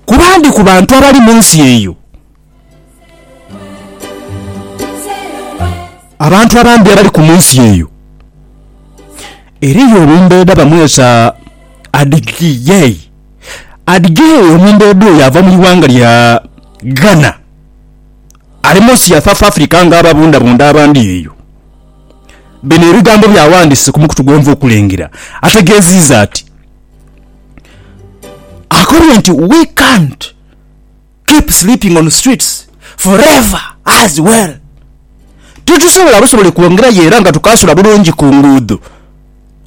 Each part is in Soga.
Ku bandi ku bantu abali mu nsi eyo, abantu abandi abaliku mu nsi eyo, eriyo omumbeeda bamwesa Adjei. Adjei omumbeeda oyo ava mu ighanga lya Ghana, ali mu nsi ya South Africa nga ababundabunda abandi eyo. Bino ebigambo byawandise ku mukutu gwenva okulengera ategeziiza ati. Akombye nti we can't keep sleeping on streets forever as well titusobola busobole kwongerayo era nga tukaasula bulungi ku nguudho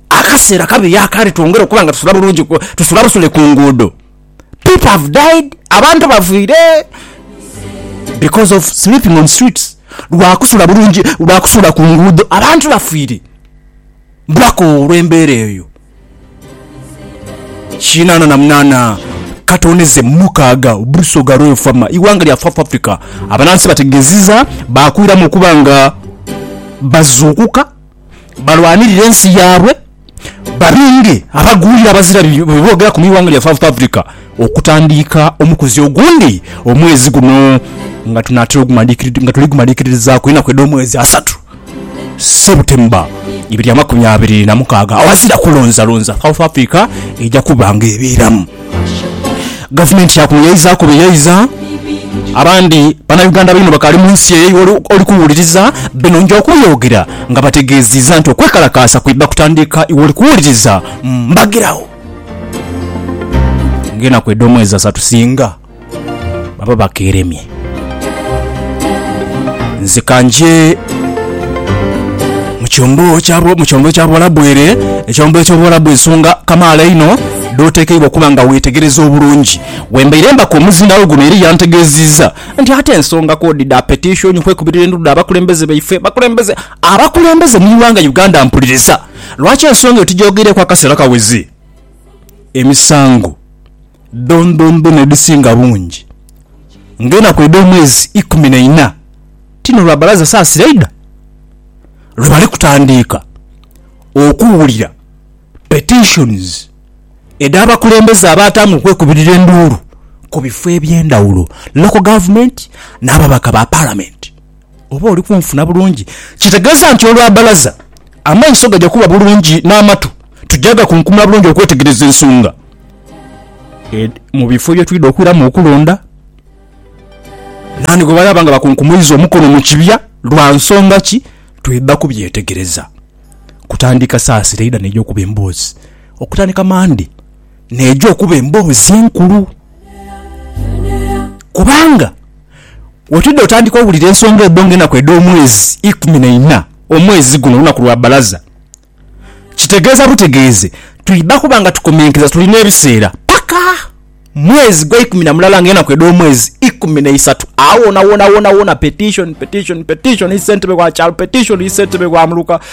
akaseera kabeyo akandi twongere okuba nga tusula bulungi tusula busule ku nguudho people have died abantu bafiire because of sleeping on streets lwa kusula bulungi lwa kusula ku nguudho abantu bafiire. Blacko olw'embeera eyo kinaana na munaana katoneze mu mukaaga Busoga lw'efaama ighanga lya South Africa abanansi bategeziza baakwiramu okuba nga bazuukuka balwanirire ensi yaabwe babinge abagwira abazira bye boogeraku mu ighanga lya South Africa. okutandiika omukuzi ogundi omwezi guno nga tunaatera nga tuli gumaliikirizaaku enaku edh'omwezi asatu, Sebutemba ibiri amakumi abiri na mukaaga, aghazira kulonzalonza, South Africa eja kuba nga ebeeramu. Gavumenti yakunuyaizaaku buyaiza abandi Banauganda baino bakaali mu nsi eyo iwe oli kuwuliriza bino nja okubyogera nga bategeeziza nti okwekalakaasa kwidha kutandiika iwe oli kuwuliriza mbagiragho. ng'enaku edh'omwezi asatu singa baba bakeeremye. Nzika nje mu kyombo kya bu- mu kyombo kya Buwalabu ere, ekyombo eky'Obuwalabu ensonga kamaala einho dh'oteekeibwa okuba nga weetegereza obulungi. Wembaire mbaka omuzindaalo guno era yantegeezizza nti ate ensonga k'odi dha petishoni, okwekubirira endulu dh'abakulembeze baife, abakulembeze, abakulembeze mu ighanga Uganda mpuliriza. Lwaki ensonga eyo tugyogeireku akaseera kaweze? Emisango dhondhondhona edhisinga bungi ng'enaku edh'omwezi ikumi na ina ti n'olwa balaza saasira idha lwe bali kutandiika okuwulira petitions edh'abakulembeze abaatange okwekubirira enduulu ku bifo eby'endhawulo, local government n'ababaka ba Palamenti. Oba oli kunfuna bulungi? Kitegeeza nti olwa bbalaza amaiso gaja kuba bulungi n'amatu tuja gakunkumula bulungi okwetegereza ensonga edh mu bifo bye twidha okwiramu okulonda. Naani gwe banaaba nga bakunkumuiza omukono mu kibya lwa nsonga ki, twidha kubyetegereza kutandika saa sita eidha n'eja okuba emboozi okutandika Mande. n'eja okuba emboozi enkulu. Kubanga wetwidha otandika owulira ensonga edho nga enaku edh'omwezi ikumi na ina, omwezi guno lunaku lwa bbalaza. Kitegeeza butegeeze twidha kuba nga tukomenkeza tuli n'ebiseera paka mwezi gwa ikumi na mulala nga enaku edh'omwezi ikumi na isatu. Agho wonawona, wonawona, petition, petition, petition, yi ssentebe wa kyalo, petition, yi ssentebe wa muluka.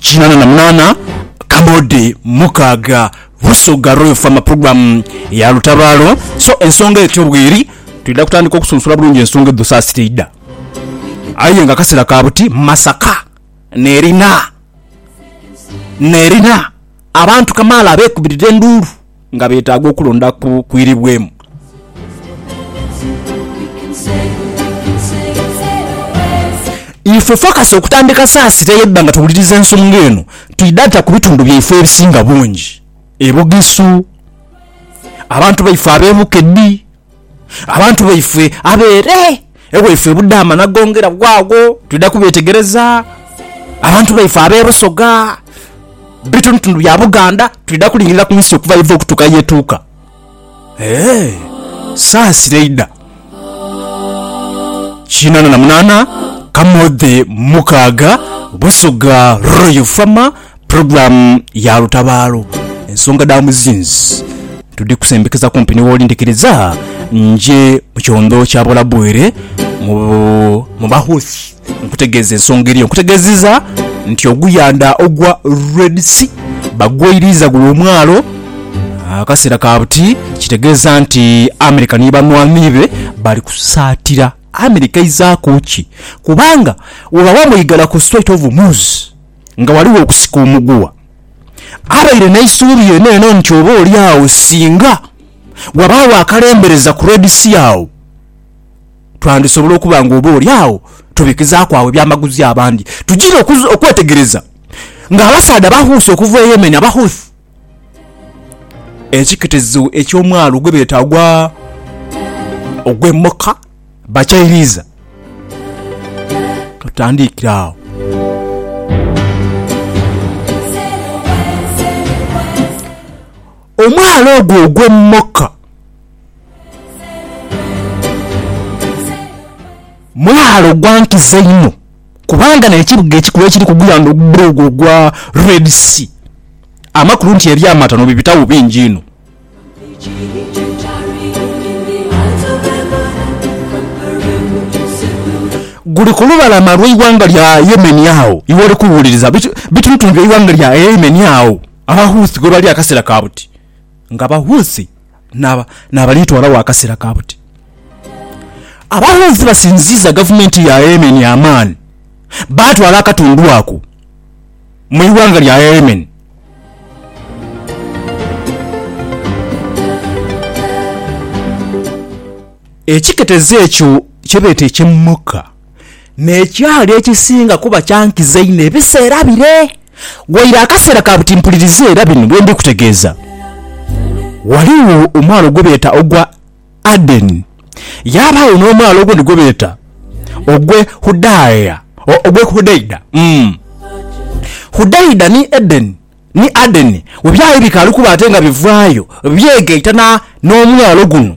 kinana na munana Kamode mukaaga Busoga Royal Farmer Program ya lutabaalo so ensonga etyo bweri twidha kutandika okusunsula bulungi ensonga edho saasira eidha aye nga kasera ka buti Masaka nerina nerina abantu kamaala abekubirira enduulu. nga beetaaga okulonda ku kwiribwemu. Ife fokasi okutandika saasira eyo edda nga tuwuliriza ensonga eno, twidata ku bitundu byaife ebisinga bungi e Bugisu, abantu baife ab'e Bukedi, Abantu baifwe abeere ewaifwe e Budaama nagongera gho agho twidha kubetegereza. Abantu baifwe ab'e Busoga, bitundutundu bya Buganda twidha kulingirira ku nsi okuva yeva okutuuka yetuuka. Eeh, saasira eidha. Kinaana na munaana, Kamodhe mukaaga, Busoga Royal Farmer. Pulogulaamu ya lutabaalo, ensonga dha muzinzi tudhikusembekeza kumpi ni wooli ndhikiriza nje mu kyondho kya Bulabuwire mu mu Bahuthi nkutegeeze ensonga eriyo. Nkutegeeziza nti oguyandha ogwa Red Sea bagweiriiza gule omwalo akaseera ka buti kitegeeza nti America ni banhwanhi be bali kusaatira. America eizaaku ki? Kubanga bwebaba mweigala ku Strait of Hormuz, Nga ghaligho okusika omuguwa, abaire n'eisuubi lyenelyena nti oba oli agho singa ghabaagho akalembereza ku Red Sea agho twandisobola okuba nga oba oli agho tubikizaaku agho ebyamaguzi abandi. Tujiire okwetegereza ng'abasaadha abahuusi okuva e Yemen, Abahouthi, ekiketezo eky'omwalo gwebeeta ogwa ogwe Moka bakyairiiza. Tutandiikire agho. Omwalo ogwo ogwe Moka mwalo gwa nkizo inho. kubanga n'ekibuga ekikulu ekiri ku gwanga ogugule ogwo ogwa Red Sea, amakulu nti eby'amatano bibitagho bingi inho. Guli ku lubalama lw'eighanga lya Yemen agho iw'oli kuwuliriza bitulutulu by'eighanga lya Yemen agho Abahouthi ghebali akaseera ka buti. Nga Abahouthi naabalitwalagho akaseera ka buti. Abalonzi basinziiza gavumenti ya Yemen amaani baatwala akatundu ako mu ighanga lya Yemen. Ekiketezo ekyo kyebeeta eky'e Mukka. N'ekyali ekisinga kuba kya nkizo einho ebiseera bire, waire akaseera ka buti mpuliriza era bino bye ndi kutegeeza. Ghaligho omwalo gwe beeta ogwa Adeni, yaabaagho n'omwalo ogundi gwe beeta ogw'e Hudaia, ogw'e Hudaida. Hudaida ni Edeni, ni Adeni we byali bikaali kuba ate nga bivaayo byegaitana n'omwalo guno.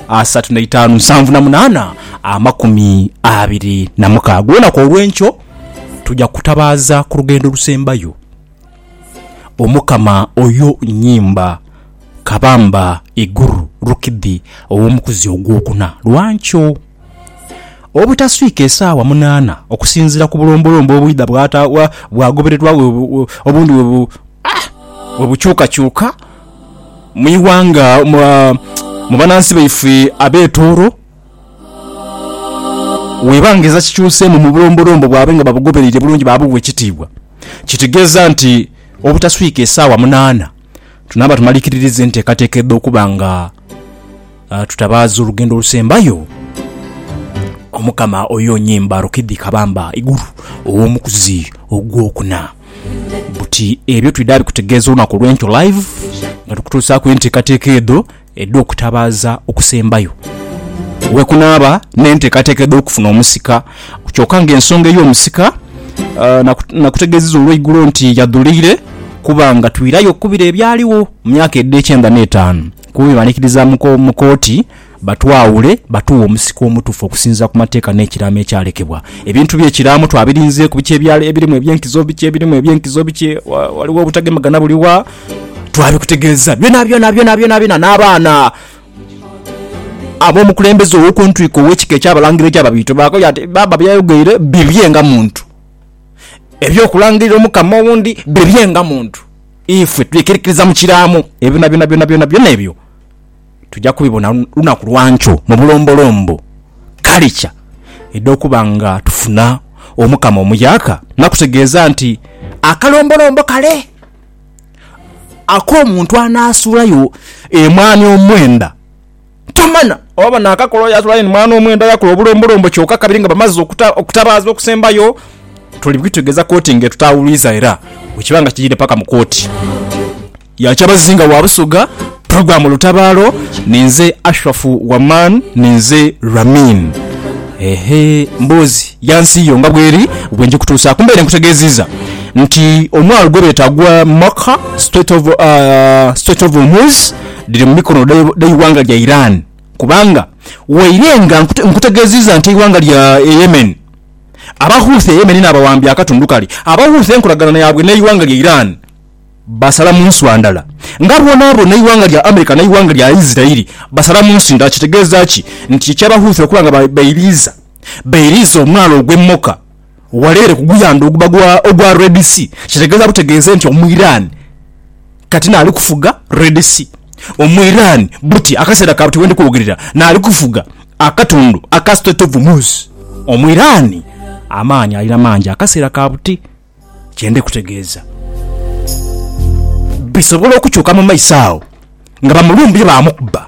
asatu n'eitaanu nsanvu na munaana amakumi abiri na mukaaga. Olunaku olw'enkyo tuja kutabaaza ku lugendo olusembayo Omukama oyo nyimba kabamba iguru rukidhi ow'omukuzi ogwokuna. Lwa nkyo, obutaswika esaawa munaana okusinziira ku bulombolombo obwidha bwata bwagobererwa obundi bwe bukyukakyuka, mu ighanga, mu banansi baifwe ab'etooro, weeba nga eza kikyuseemu mu bulombolombo bwabwe nga babugobereire bulungi baabugha ekitiibwa. Kitegeeza nti obutaswika esaawa munaana tunaaba tumalikiririza enteekateeka edh'okuba nga. Tutabaaza olugendo olusembayo Omukama oyo onyimba Rukidi Kabamba Iguru ow'omukuzi ogw'okuna buti ebyo twidha bikutegeeza olunaku olw'enkyo live nga tukutuusaaku enteekateeka edho edh'okutabaaza okusembayo wekunaaba n'enteekateeka edh'okufuna omusika kyoka nga ensonga ey'omusika nakutegeezeza olweigulo nti yadhuliire kuba nga twiirayo okukubira ebyaligho mu myaka edh'ekyenda n'etaanu. Kuba bwebanikiriza mu kooti batwawule batuwe omusika omutufu okusinzira ku mateeka n'ekiraamo ekyalekebwa. Ebintu bye kiraamo twabirinzeeku biki ebirimu ebyenkizo, biki ebirimu ebyenkizo, biki waliwo obutagemagana buli wa twabikutegeeza byona byona byona byona byona n'abaana ab'omukulembeze ow'okuntwiko ow'ekika eky'abalangira eky'Ababiito baakoyo ati baaba byayogeire bibye nga muntu, eby'okulangirira omukama owundi bibye nga muntu. Ifwe twikirikiriza mu kiraamo ebyo byonabyona, byonabyona, byona ebyo tuja kubibona lunaku lwa nkyo mu bulombolombo. Kale kya idha okuba nga tufuna Omukama omuyaaka nakutegeeza nti, Akalombolombo kale ak'omuntu anaasuulayo emwaani omwenda. Tomanha oba banaakakola oyo atwala aine mwana omu enda yaakola obulombolombo kyoka kabiri nga bamaze okutabaaza okusembayo. Tuli bwitegeeza kooti ng'etutaawuluiza era bwekiba nga kiidhidhe paka mu kooti ya Kyabazinga wa Busoga, Program Lutabaalo, ninze Ashraf Waman, ninze Ramin. Ehe, mboozi ya nsi yo nga bweri bwe njikutuusaaku. Mbaire nkutegeeziiza nti omwalo gwebeeta gwa Maka, Strait of, uh, Strait of Hormuz, dhiri mu mikono dh'eighanga lya Iran kubanga waire nga nkutegeziiza nti eighanga lya Yemen aba Houthi e Yemen n'abawambye akatundu kali aba Houthi enkolagana yaabwe n'eighanga lya Iran basala mu nswa ndala nga bwonabwona eighanga lya America n'eighanga lya Israel basala mu nsi ndala kitegeeza ki nti eky'aba Houthi okuba nga bairiiza bairiiza omwalo ogw'e Moka Waleere ku guyandha oguba gwa ogwa Red Sea, kitegeeza butegeeze nti Omwiraani kati n'ali kufuga Red Sea. Omwiraani buti akaseera ka buti we ndi kwogerera n'ali kufuga akatundu aka Strait of Hormuz. Omwiraani amaani alina mangi akaseera ka buti. Kye ndi kutegeeza bisobola okukyuka mu maiso agho nga bamulumbye baamukuba.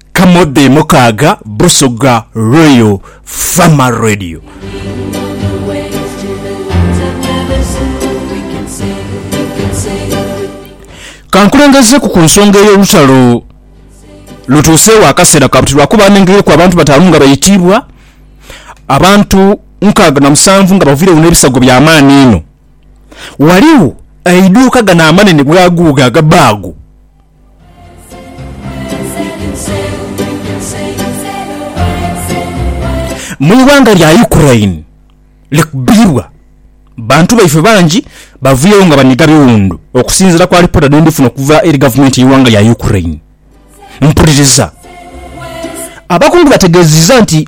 Kamodde Mukaaga Busoga Royal Farmer Radio. Kankulengezeeku ku nsonga ey'olutalo lutuuseewo akaseera ka buti lwakuba nengereku abantu bataanu nga baitiibwa, abantu nkaaga na musanvu nga baviiregho n'ebisago bya maani inho. Ghaligho eiduuka gano amanene bwaguuga aga bbaago. Mu ighanga lya Ukraine likubirwa, bantu baife bangi baviiregho nga baniga biwundu, okusinziira ku alipoota dhe ndifuna okuva eri gavumenti y'eighanga lya Ukraine. Mpuliriza. Abakungu bategeezezza nti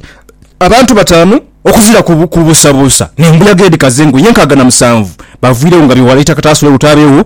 abantu bataanu okuvira ku buusabuusa n'embuyaga edhikaze engo y'enkaaga na musanvu baviiregho nga biwalaita kataasula obutaabegho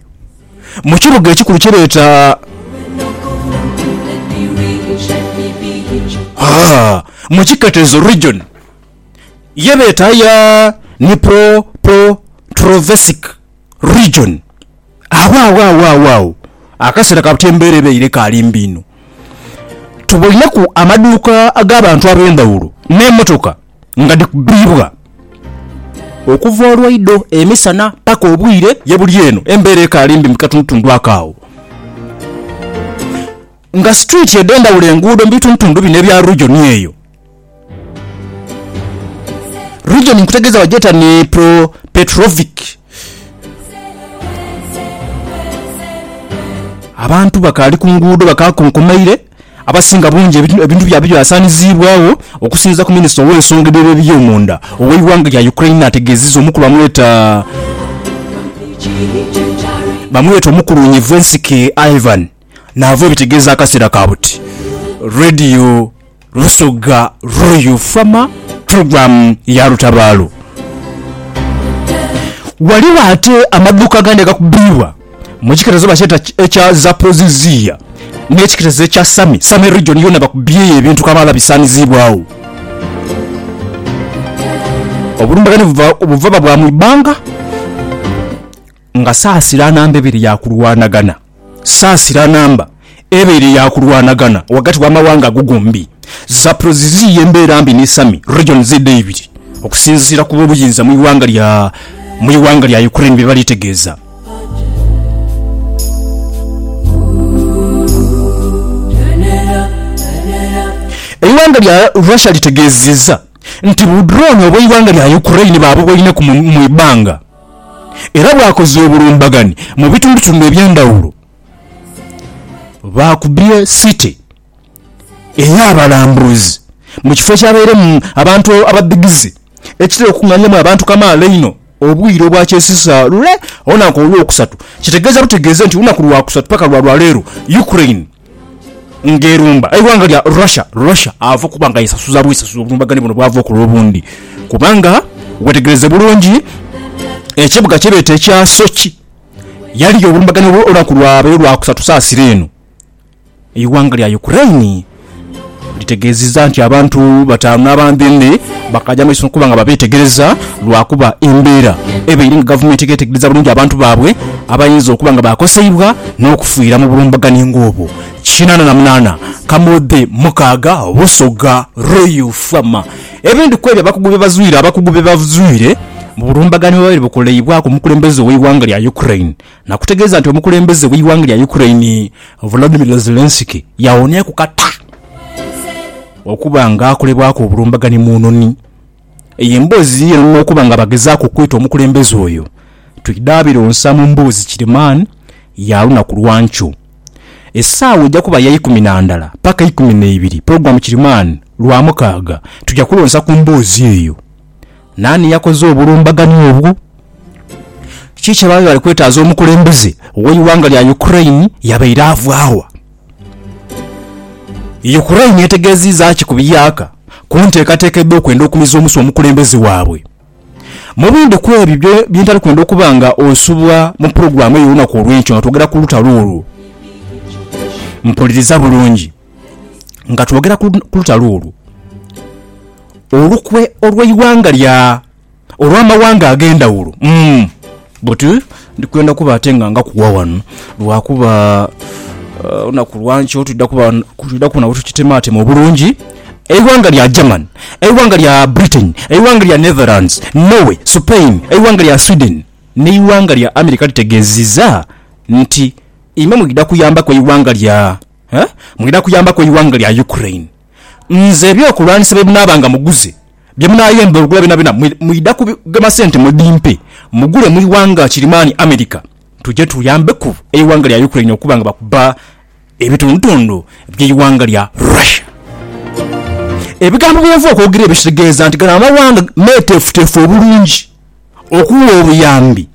mu kibuga ekikulu kye beeta mu kiketezo, region, ye beeta eya Dnipropetrovsk Region. Agho agho akaseera ka buti embeera ebaire ekaali mbi inho. Tuboineku amaduuka ag'abantu ab'endhaghulo n'emotoka. nga dhikubibwa okuva olwaido emisana paka obwire ye buli eno embera ekaali mbi mukatundutundu ako agho nga street edhendhaghulo enguudo mubitundutundu bino ebya region eyo region nkutegeza bagyeta Dnipropetrovsk abantu bakaali kunguudo bakakonkomaire. abasinga bungi ebintu byabwe byasaaniziibwagho okusinziira ku minisita ow'ensonga dh'ebyomunda ow'eighanga lya Ukraine ategeezezza omukulu amweta bamweta omukuluunhivu ensike Ivan Naavo ebitegeeza akaseera ka buti Radio Busoga Royal Farmer Program ya Lutabaalo. Ghaligho ate amaduuka agandi agakubibwa. Mu kiketezo bakyeta ekya Zaporizhzhia n'ekiketezo ekya Sami, Sami region yoona bakubyeyo ebintu kamaala bisaaniziibwagho. Obulumbaganhe buvaba bwa mu ibanga nga saasira namba ebiri ya kulwanaganha, saasira namba. ebaire ya kulwanagana ghagati w'amawanga ago gombi. Zaporozhzhia y'embeera mbi ni Sami region z'edha eibiri, okusinziira ku b'obuyinza mu ighanga lya mu ighanga lya Ukraine bye bali tegeeza. Eighanga lya Russia litegeeziza nti bu drone obw'eighanga lya Ukraine baabuboineku mu ibbanga era bwakoze obulumbagani mu bitundutundu eby'endhawulo. Baakubye City ey'abalambuzi mu kifo ekyabairemu abantu abadhigize ekitera okukunganyamu abantu kamaala einho obwire obwakyesisa lule olunaku Olwokusatu kitegeeza butegeeze nti olunaku Lwakusatu paka lwa lwaleero Ukraine ng'erumba eighanga lya Russia Russia ava okuba nga yesasuza bwesasuzi obulumbaganhi buno bwava okola obundi kubanga wetegereze bulungi ekibuga kyebeeta ekya Sochi Yaliyo obulumbaganho bwo lunaku lwabaire Lwakusatu saa sita eno, eighanga lya Ukraine litegeziza nti abantu batanu n'abandhendhe bakaja maiso nokuba nga babetegereza lwakuba embera ebaire nga gavumenti egetegereza bulungi abantu babwe abayinza okuba nga bakoseibwa nokufiira mu bulumbaganhi nga obwo. Kinana na munana kamodhe mukaaga Busoga Royal Farmer. Ebindi kwebyo abakugu byebazwire Abakugu byebazwire mu bulumbaganhi obwabaire bukoleibwaku omukulembeze oweighanga lya Ukraine nakutegeeza nti omukulembeze weighanga lya Ukraine Volodymyr Zelensky yawonyaku kata okuba nga akolebwaku obulumbaganhi mu nhonhi eyo emboozi yiyo nokuba nga bagezaaku okwita omukulembeze oyo twidhaabiro nsa mu mboozi kirimaani ya lunaku lwankyo. Esaawa eja kuba ya ikumi na ndala paka ikumi na ibiri program Kirimani, Lwamukaaga, tuja kulonsa ku mboozi eyo. Naani yakoze obulumbaganhi obwo? Kiki kye baali bali kwetaaza omukulembeze w'eighanga lya Ukraine yabaire ava wa? Ukraine etegeeziiza ki ku biyaaka ku nteekateeka edh'okwenda okumiza omusu omukulembeze waabwe? Mu bindi ku ebyo bye ntali kwenda okuba nga nsubwa mu pulogulaamu ey'olunaku olw'enkyo nga twogera ku lutalo olwo. Mpuliriza bulungi. Nga twogera ku lutalo olwo, olukwe olw'eighanga lya, olw'amawanga ag'endhawulo, umm. Buti ndi kwenda kuba ate nga ngakuwa wano lwakuba uh, lunaku lwankyo twidha kubona bwetukitematema obulungi eighanga lya German, eighanga lya Britain, eighanga lya Netherlands, Norway, Spain, eighanga lya Sweden n'eighanga lya America litegeziza nti imwe mwidha kuyambaku eighanga lya eh, mwidha kuyambaku eighanga lya Ukraine. nze eby'okulwanisa bye munaaba nga muguze, bye munaayemba olugula byonabyona mwe mwidha kugema sente mudimpe mugule mu ighanga kirimaani America tuje tuyambeku eighanga lya Ukraine okuba nga bakuba ebitundutundu by'eighanga lya Russia. Ebigambo bye yava okwogera ebyo kitegeeza nti gano amawanga meeteefuteefu obulungi okuwa obuyambi.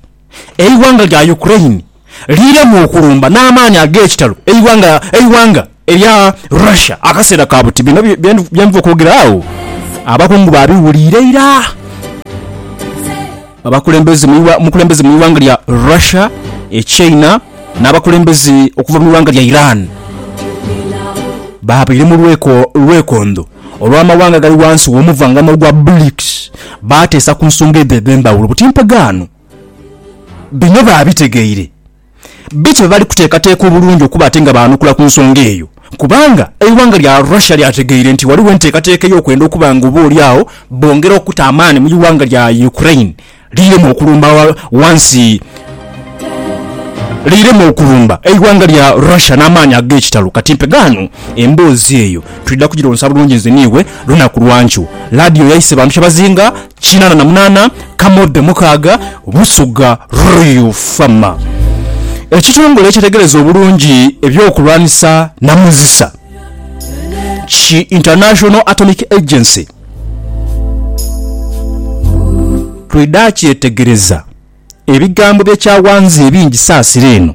Eighanga lya Ukraine liremwa okulumba n'amaani ag'ekitalo eighanga erya Russia akaseera ka buti. Bino bye nva okwogera agho abakungu baabiwuliire ira. Abakulembeze mu ighanga lya Russia, e China n'abakulembeze okuva mu ighanga lya Iran baabaire mu lwekondho. Olw'amawanga agali ghansi w'omuvangano ogwa BRICS baateesa ku nsonga edho edh'endhaghulo buti mpegaano, bino baabitegeire bityo bwe bali kuteekateeka obulungi okuba ate nga baanukula ku nsonga eyo kubanga eighanga lya Russia lyategeire nti ghaligho enteekateeka ey'okwenda okuba nga oba oli agho bongera okuta amaani mu ighanga lya Ukraine Liiremu okulumba ghansi Liiremu okulumba eighanga lya Russia n'amaani ag'ekitalo kati mpe ghano. Emboozi eyo twidha kugironsa bulungi nze n'iwe lunaku lwa nkyo. Laadiyo yaise bantu kyabazinga kinaana na munaana, Kamodho mukaaga, Busoga Royal Farmer. Ekitongole ekyetegereza obulungi eby'okulwanisa namuzisa ki International Atomic Agency, Twidha kyetegereza ebigambo bye kyawanze ebingi saasira eno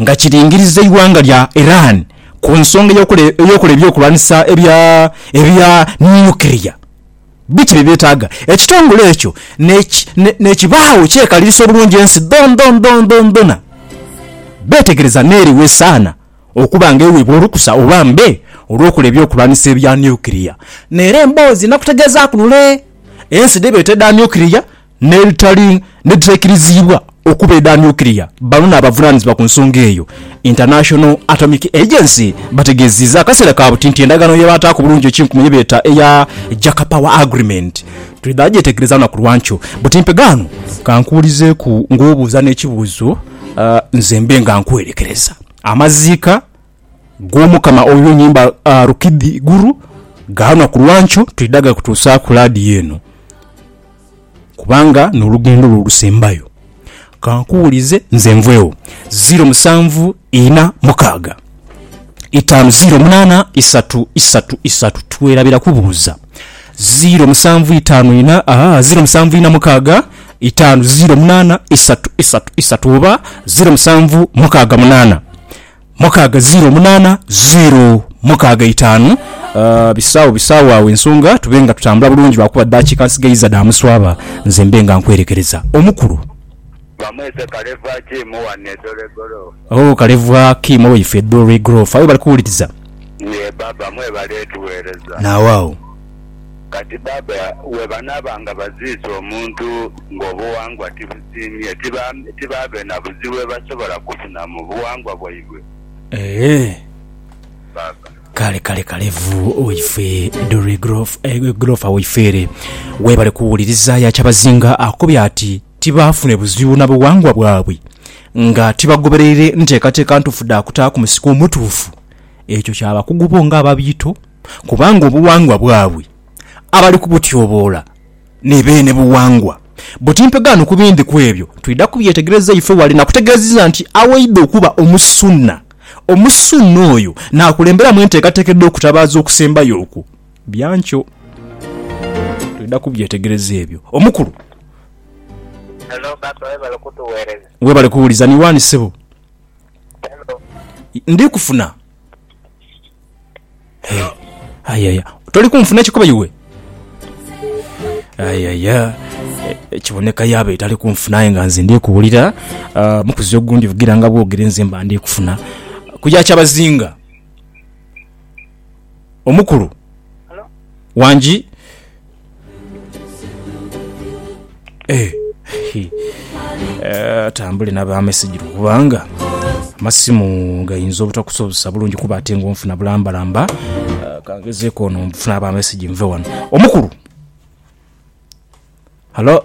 nga kiringiriza eighanga lya Iran ku nsonga ey'okola eby'okulwanisa ebya nukiriya. Biki bye byetaaga? Ekitongole ekyo n'ekibaagho ekyekaliriisa obulungi ensi dhoondhoondhoondhona, beetegereza n'eriwa esaana. okuba nga ewebwa olukusa oba mbe olwokola ebyokulwanisa ebya nuclear nera emboozi nakutegezaku lule ensi dhebeeta edha nuclear nedhitali nedhitaikiriziibwa okuba edha nuclear bano nabavunanizibwa ku nsonga eyo International Atomic Agency bategeziiza akaseera kabuti nti endagaano yebataaku bulungi ekinkumu yebeeta eya Jack Power Agreement twidha gyetegereza lunaku lwankyo buti mpegaano. Kankuwulizeeku ng'obuuza n'ekibuuzo nze mbe nga nkwerekereza. Amaziika g'Omukama oyo nyimba rukidhi iguru, ga lunaku lwa nkyo twidha gakutuusaaku laadiyo eno, kubanga n'olugendo lwo olusembayo. Ka nkuwulize nze nvwegho. Ziiro musanvu ina mukaaga, itaanu ziiro munaana isatu isatu isatu. Twerabira kubuuza. Ziiro musanvu itaanu ina, aa, ziiro musanvu ina mukaaga. itaanu ziro munaana isatu isatu isatu oba ziro musanvu mukaaga munaana mukaaga ziro munaana ziro mukaaga itaanu. Ah, bisaawo bisaawo awo ensonga tube nga tutambula bulungi lwakuba daakika nsigaiza dha muswaba nze mbe nga nkwerekereza omukulu. Bamwete Kalevwa Kim wano e Dole Goloofa. Oh Kalevwa Kim owaife e Dole Goloofa aye bali kuwuliriza? Yee Baaba, mwebale tuweereza. Naawaawo. Kati baaba bwebanaaba nga baziise omuntu ng'obuwangwa tibusiimye, tibaabe na buzibu bwebasobola kufuna mu buwangwa bwaibwe? Eeh, baaba. Kale kale kale vu waife Doreen Grof, eh, Grofa waife ere. Webale kuwuliriza ya Kyabazinga akubye ati tibaafune buzibu na buwangwa bwabwe nga tibagobereire nteekateeka ntuufu dha kutaaku musiko omutuufu. Ekyo kya bakugu bo ng'ababiito. kubanga obuwangwa bwabwe abali kubutyoboola ni beene buwangwa buti. Mpegaano ku bindi ku ebyo twidha kubyetegereza ife wale. Nakutegeezizza nti awaidha okuba Omusunna, Omusunna oyo naakulemberamu enteekateeka edh'okutabaaza okusembayo okwo. Bya nkyo twidha kubyetegereza ebyo. Omukulu. Hello Baker, webale kutuwereza. Webale kuwuliza. Ni waani ssebo? Hello. Ndikufuna. Eh, ayaya toli kunfuna ekikoba iwe ayaya Eh, kiboneka yaba etali kunfuna aye nga nze ndikuwulira Ah, mukuzi ogundi vugira nga bwogere nze mba ndikufuna kuya kyabazinga omukulu wangi atambule na ba mesigiro kubanga amasimu gayinza obutakusobozesa bulungi kuba ate nga onfuna bulambalamba Ah, kangezeeko ono nfuna aba mesigyi nve wano omukulu halo